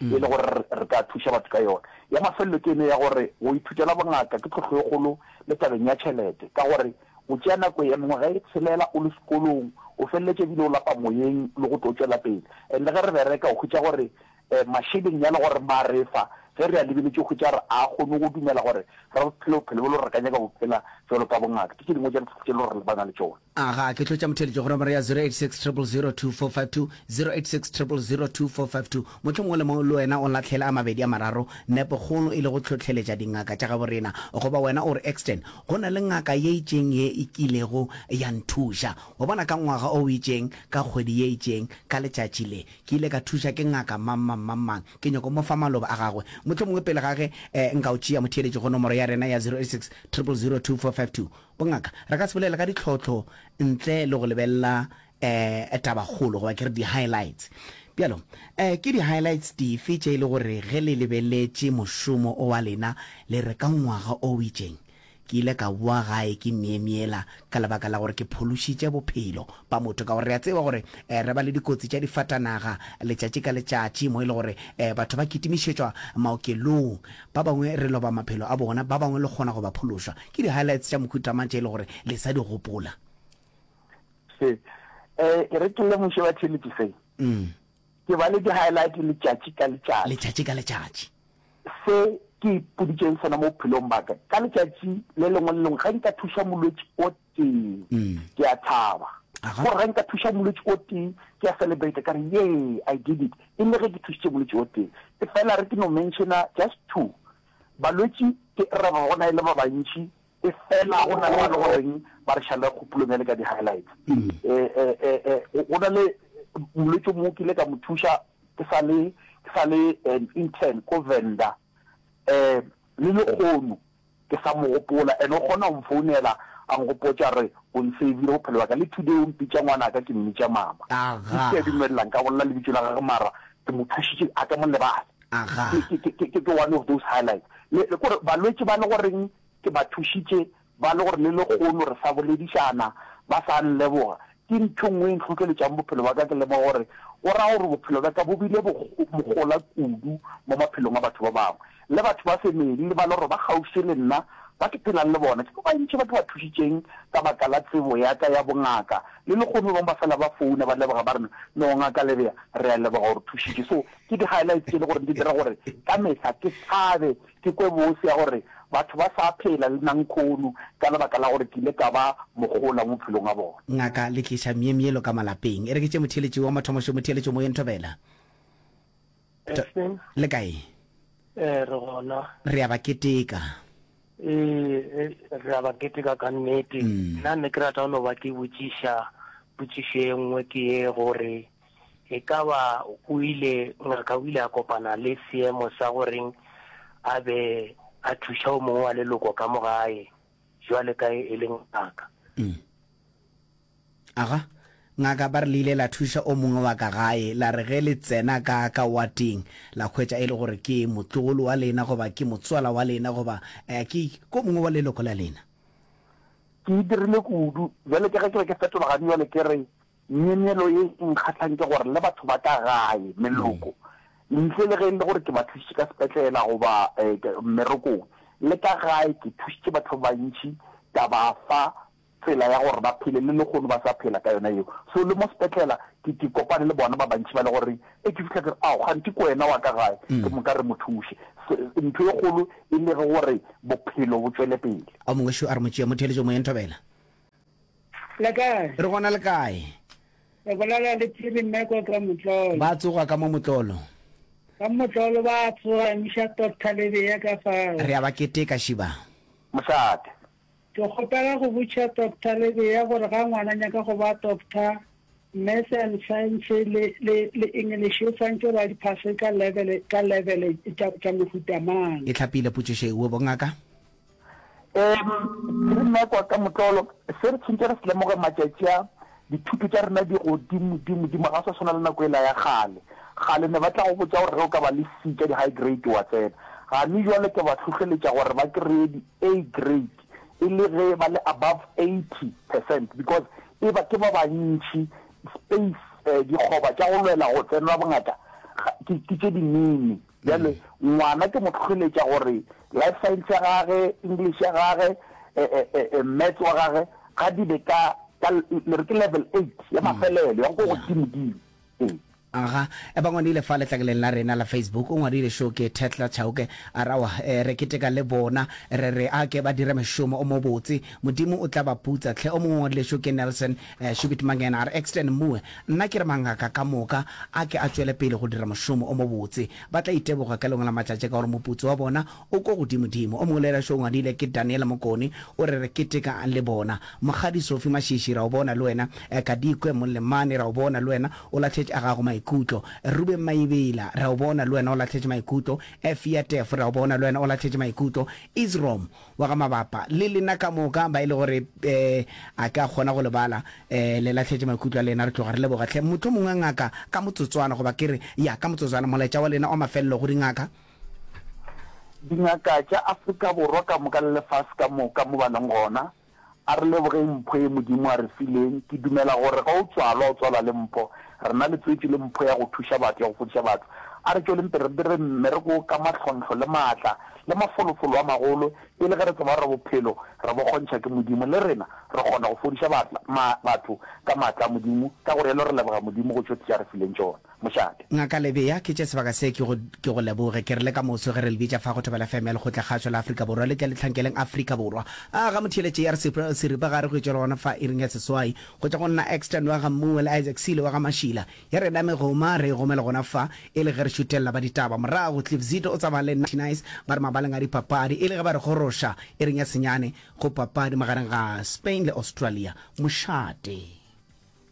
e le gore re ka thuša batho ka yona. Ya mafelelo ke ene ya gore go ithutela bongaka ke tlhohlo e kgolo le tabeng ya tšhelete ka gore o tšea nako ya mengwaga e tshelela o le sekolong, o feleletša ebile o lapa moyeng le go tlo tšwela pele. And le ge re bereka o hwetša gore mašeleng ya le gore ma re fa ge re a lebeletše o hwetša re a kgone go dumela gore re phele bophelo bo le gore re ka nyaka go phela bjalo ka bongaka. Ke tše dingwe tša ditlhohlo tše le gore re lebana le tšona. A ga ke tlotša motheeletši go nomoro ya 0860002452, 0860002452. Motho mongwe le mongwe le wena o lahlele a mabedi a mararo, nepo kgolo e le go hlohleletša dingaka tša gabo rena. Goba wena o re, Ekstein, go na le ngaka ye itšeng ye e kilego ya nthuša. Wa bona, ka ngwaga o itšeng, ka kgwedi ye itšeng, ka letšatši le, ke ile ka thuša ke ngaka mang-mang-mang-mang. Ke nyoko mo fa maloba a gagwe. Mohlomongwe pele ga ge eh, nka o tšea motheeletši go nomoro ya rena ya 0860002452. Bongaka re ka se bolele ka ditlhohlo ntle le go lebelela um tabakgolo goba ke re di-highlights. Bjalo um ke di-highlights dife tše e le gore ge le lebeletše mošomo o wa lena le re ka ngwaga o itšeng ke ile ka boa gae ke myemyela ka lebaka la gore ke phološitše bophelo ba motho? Ka gore re a tseba gore um re ba le dikotsi tša difatanaga letšatši ka letšatši mo e le gore um batho ba kitimišetšwa maokelong, ba bangwe re loba maphelo a bona, ba bangwe le kgona go ba phološa. Ke di-highlights tša mohuta mang tše e le gore le sa di gopola? Se, eh, e re ke lemoše ba Thelepi se. Mm. Ke ba le di-highlight letšatši ka letšatši. Letšatši ka letšatši. Se ke ipoditšeng sona mo bophelong ba ka, ka letšatši le lengwe le lengwe, ge nka thuša molwetši o tee, mm. ke a thaba. Gore ge nka thuša molwetši o tee, ke a celebrate ka re, yee, I did it. E le ge ke thušitše molwetši o tee. E fela re ke no mentiona just two, Balwetši ke ra ba gona e le ba bantši efela go na le ba le goreng ba re šale kgopolong ya le ka di-highlights. Go na le molwetši o mongwe o kile ka mo thuša ke sa le ke sa le an intern ko Venda le lekgono ke sa mo gopola and o kgona go mfounela a nkgopotša re o nsavile bophelo bja ka le today o mpitša ngwanaka ke mmitša mama. Ke a dumelela nka bolela lebitso la gagwe mara ke mo thušitše a ka mo lebale. Aga. Ke, ke, ke, ke one of those highlights. Le, le kore balwetši ba le goreng ke ba thušitše, ba le gore le lekgono re sa boledišana, ba sa nleboga, ke ntho e nngwe e ntlhotleletšago bophelo bja ka, ke lemoga gore go ra gore bophelo bja ka bo bile bo, bogola kudu mo maphelong a batho ba bangwe. Le batho ba family le ba le gore ba kgauswi le nna, ba ke phelang le bona, ke ba bantši ba ke ba thušitšeng ka baka la tsebo ya ka ya bongaka. Le lekgono ba bangwe ba fela ba founa ba leboga ba re, No Ngaka Lebea, re a leboga o re thušitše. So, Ke di-highlights tše e le gore di dira gore ka mehla ke thabe, ke kwe bose ya gore batho ba sa phela le nankhoonu ka lebaka la gore ke ile ka ba mogola mo maphelong a bona. Ngaka le tliša myemyelo ka malapeng, e re ke tše motheeletši wa mathomo šo motheeletšo moyeng thobela. T le kae? Ee, re gona. Re a ba keteka. Ee, re a ba keteka ka nnete. Nna ne ke rata go no ba ke botšiša potšišo e nngwe ke ye gore E ka ba o ile, ngaka o ile a kopana le seemo sa go reng a be a thuša o mongwe wa leloko ka mo gae, jwale ka e le ngaka. Mm. Aga, ngaka ba re le ile la thuša o mongwe wa ka gae, la re ge le tsena ka ka wating, la hwetša e le gore ke motlogolo wa lena goba ke motswala wa lena goba eh, ke ko mongwe wa leloko la lena. Ke e dirile kudu. Jwale ke ge ke be ke fetologane jwale ke re Myemyelo ye e nkgahlang ke gore le batho ba ka gae, meloko, ntle le ge e le gore ke ba thušitše ka sepetlela goba mmerekong, le ka gae ke thušitše batho ba bantši ka ba fa tsela ya gore ba phele le lehono ba sa phela ka yona yeo. So le mo sepetlela ke ke kopane le bona ba bantši ba le gore e ke fihla ke re, ao kganthe ke wena wa ka gae, ke mo ka re mo thuše. Ntho e kgolo e le gore bophelo bo tšwele pele. Ao mongwe šo a re, Motšeamotheeletšomoyeng thobela. Le kae? Re gona le kae? Re bolela le Phiri mme kwa ka Motlolo. Ba tsoga ka mo Motlolo. Ka Motlolo ba tsoga emiša Tot Thalebea ka fao. Re a ba keteka, Šiba. Mosadi. Ke kgopela go botša Tot Thalebea gore ga ngwana nyaka go ba doctor, Maths and Science le, le, le English o swantše ba di phase ka level, ka level tša, tša mohuta mang. E hlapile potšišo ewe, bongaka? Ehm, ke re nna kwa ka motlolo, se re tshwantse re se lemoge matšatši a, dithuto tša rena di godimo dimo dimo, ga sa tshwana le nako ela ya kgale. Kgale ne ba tla go botša gore ge o ka ba le C tša di-high grade wa tsena. Gane jwale ke ba hlohleletša gore ba kry-e di-A grade e le ge ba le above eighty percent because e ba ke ba bantši, space, um dikgoba tša go lwela go tsenela bongata ke tše dinini. Bjale, ngwana ke mo hlohleletša gore life science ya gage, English ya gage, Maths wa gage, ga di be ka, ka, le re ke level eight, ya mafelelo, ya go ko godimo-dimo. Ee. Aga, ba ngwadile fa letlakeleng la rena la Facebook, o ngwadile šo ke Thehla Chauke, a re, Aowa, re keteka le bona, re re a ke ba dire mošomo o mobotse, Modimo o tla ba putsa. Tlhe, o mongwe o ngwadile šo ke Nelson, Shubit Mangena a re, Extern Mue, nna ke re mangaka ka moka a ke a tšwele pele go dira mošomo o mobotse. Ba tla iteboga ka lengwe la matšatši ka gore moputso wa bona o ko godimodimo. O mongwe le ena šo o ngwadile ke Daniel Mokoni o re, Re keteka le bona. Mokgadi Sophie Mashishi ra o bona le wena. Kadikwe Molemane ra o bona le wena o lahletše a gago maikutlo. Rubeng Maebela ra o bona le wena o lahletše maikutlo. Efia Tefo ra o bona le wena o lahletše maikutlo. Isrom. Wa ga Mabapa, le lena ka moka, ba e le gore eh, a ke a kgona go le bala, eh, le lahletše maikutlo a lena, re tloga re leboga hle. Mohlomongwe ngaka, ka motsotswana, goba ke re, ya, ka motsotswana, molaetša wa lena wa mafelelo go dingaka. Dingaka tša Afrika Borwa ka moka le lefase ka moka, mo ba leng gona, A re lebogeng mpho ye Modimo a re fileng. Ke dumela gore ge o tswalwa, o tswalwa le mpho. Rena le tswetšwe le mpho ya go thuša batho, ya go fodiša batho. A re tšweleng pele re dire mmereko wo ka mahlonhlo le maatla le mafolofolo a magolo, e le ge re tseba gore bophelo re bo kgontšha ke Modimo. Le rena re kgona go fodiša batho ka maatla a Modimo. Ka go realo re leboga Modimo go tšo tše a re fileng tšona. mošate. Ngaka Lebeya, ke tše sebaka se ke go ke go leboge. Ke re le ka moso ge re le bitša fa go Thobela FM ya Lekgotla Kgašo la Afrika Borwa, le tle le tlhankeleng Afrika Borwa. A ga motheeletše ya re sep seripa ga re go etšwe le gona fa iring ya seswai, go tša go nna Exton wa ga Mmuo le Isaac Sile wa ga Mašila. Ya rena megoma re e gome le gona fa, e le ge re šutelela ba ditaba. Morago Cliff Zito o tsamaya le Natty Nice ba re mabaleng a dipapadi, e le ge ba re goroša iring ya senyane go papadi magareng ga Spain le Australia. Mošate.